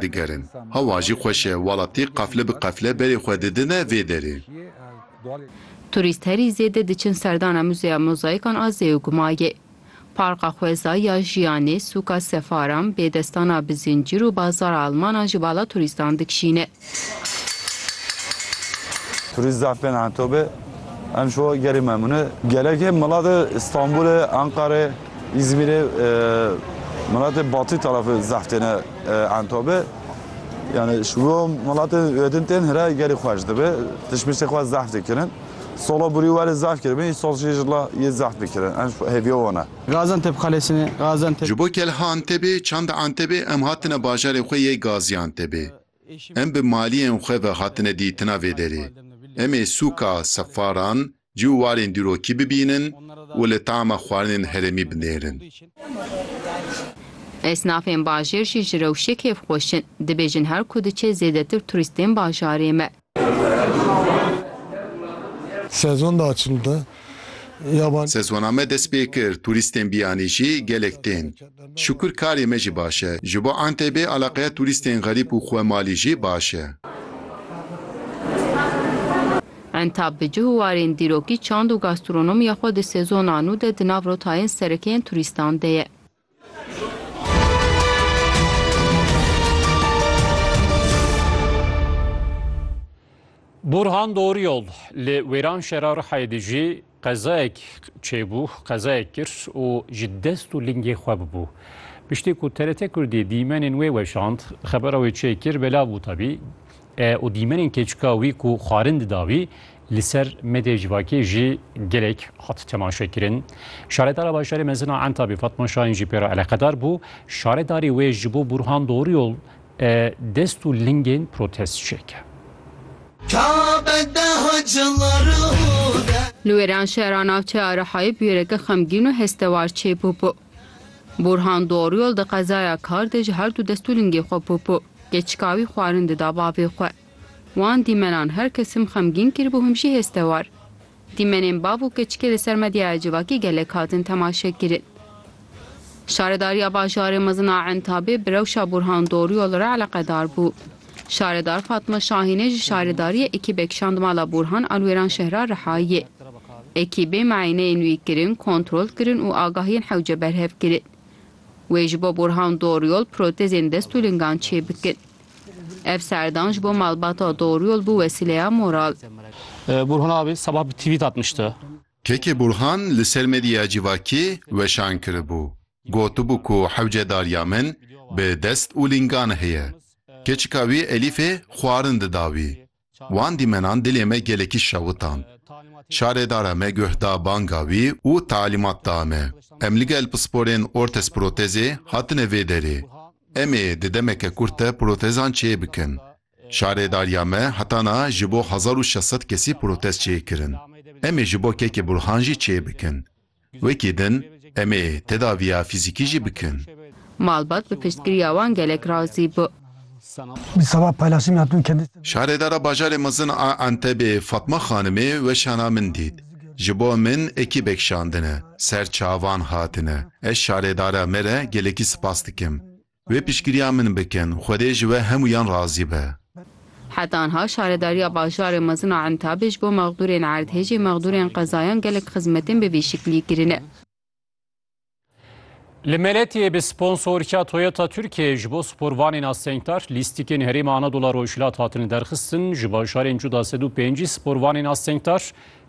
digerin. Hewa jî xweş e, welatî qefle bi qefle berê xwe didine vê derê. Turîst herî zêde diçin serdana Muzeya Mozaikan a Zêugmayê. Parka Xweza ya Jiyanê, Sûka Sefaran, Bêdestana Bizincîr û Bazara Almanan ji bala turîstan dikşîne. Turîst zaf bên Entobê, em ji we gelê memnûn e. Gelekê milat e Stenbolê, Enqerê, Îzmîrê, milatê batî tarafê zaf têne. Antobe, Yani ji bo welatên wedin tên hira gerî xweş dibe, tişmişê xwe zahf dikirin. Sola burî werê zahf kiribin, î sol jî jila yê zahf dikirin. Em hêviya wan e. Gaziantep Kalesine, Gaziantep. Ji bo kelha Antebê, çanda Antebê em hatine bajarê xwe yê Gaziantebê. Em bi maliyên xwe ve hatine dîtina vê derê. Em ê sûka Sefaran, cî û warên dîrokî bibînin û li tama xwarinên herêmî binêrin. Esnafên bajêr jî ji rewşê kêfxweş in, dibêjin her ku diçe zêdetir turîst tên bajarê me. Sezon diaçildi. Sezona me dest pê kir, turîstên biyanî jî gelek tên. Şikur karê me jî baş e. Ji bo Entebê alaqeya turîstên xerîb û xwemalî jî baş e. Entab bi cih û warên dîrokî çand û gastronomiya xwe di sezona nû de di nav rotayên sereke yên turîstan de ye. Burhan Doğruyol li Wêranşehra Rihayê de jî Qezayek çêbû, qezayek kir û ji dest û lingê xwe bibû. Piştî ku TRT Kurdî dîmenên wê weşand, xebera wê çê kir, belav bû tevî û dîmenên keçika wî ku xwarin dida wî li ser medya civakê jî gelek hat temaşekirin. Şaredara bajarê mezin a Entabê Fatma Şahin jî pê re eleqedar bû. Şaredarê wê ji bo Burhan Doğruyol Dest û lingên protest çêke. Li wêran şehra navçe ya Rihayê bûyereke xemgîn û hestewar çêbûbû. Bûrhan Doryol di qezaya Kar de ji her du dest û lingê xwe bûbû. Keçika wî xwarin dida bavê xwe. Wan dîmenan her kesim xemgîn kiribû him jî hestewar. Dîmenên bav û keçikê li ser medyaya civakî gelek hatin temaşekirin. Şaredariya bajarê mezin a Entabê bi rewşa Burhan Doryol re eleqedar bû. Şaredar Fatma Şahînê ji şaredariyê ekîbek şand mala Burhan a li Wêranşehra Rihayê. Ekîbê mieneyên wî kirin, kontrol kirin û agahiyên hewce berhev kirin. Wê ji bo Burhan Doryol protezên dest û lingan çêbikin. Ev serdan ji bo malbata Doryol bû wesîleya moral. Burhan abi sabah bir tweet atmıştı. Kekê Burhan li ser medya civakî weşan kiribû, gotibû ku hewce dariya min bi dest û lingan heye. Keçika wî Elîfê xwarin dida wî. Wan dîmenan dilê me gelekî şewitand. Şarêdara me guh da banga wî û talîmat da me. Em li gel pisporên ortez-protezê hatine vê derê. Em ê di demeke kurt de protezan çê bikin. Şarêdariya me heta na ji bo hezar û şeş sed kesî protez çê kirin. Em ê ji bo kekê Burhan jî çê bikin. Wekî din em ê tedaviya fîzîkî jî bikin. Malbat bi piştgiriya wan gelek razî bû. Şaredara bajarê mezin a Entebê Fatma Xanimê weşana min dît. Ji bo min ekîbek şandine, ser çavan hatine. Ez şaredara me re gelekî spas dikim. Wê piştgiriya min bikin. Xwedê ji we hemûyan razî be. Heta niha şaredariya bajarê mezin a Entabê ji bo mexdûrên erdhêjê, mexdûrên qezayan gelek xizmetên bi vî şiklî kirine. Li Meletiyê bi sponsorîya Toyota Tirkiyeyê ji bo sporvanên astengdar lîstikên Herêma Anadolu a Rojhilat hatine derxistin. Ji bajarên cuda sed û pêncî sporvanên astengdar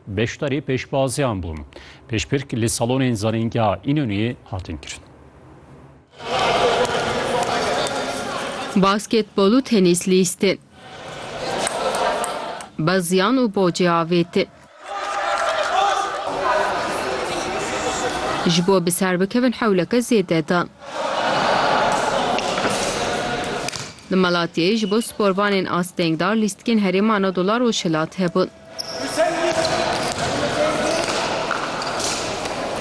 Beşdarî pêşbaziyan bûn. Pêşbirk li salonên zanîngeha Înonûyê hatin kirin. Basketbol û tenîs lîsti. Beziyan û bocê avêtin. Ji bo bi ser bikevin hewleke zêde dan. Li Malatyayê ji bo sporvanên astengdar lîstikên Herêma Anadolu a Rojhilat hebûn.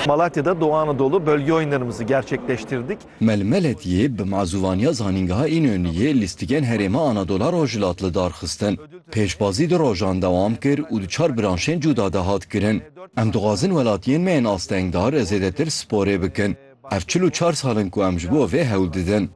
Malatya'da Doğu Anadolu bölge oyunlarımızı gerçekleştirdik. Melmeletiyê bi mazûvaniya Zanîngeha Înönü yê lîstikên herêma Anadola Rojhilat li dar xistin. Pêşbazî du rojan dewam kir û di çar branşên cûda de hat kirin. Em dixwazin welatiyên me yên astengdar zêdetir sporê bikin. Ev çil û çar sal in ku em ji bo vê hewl didin.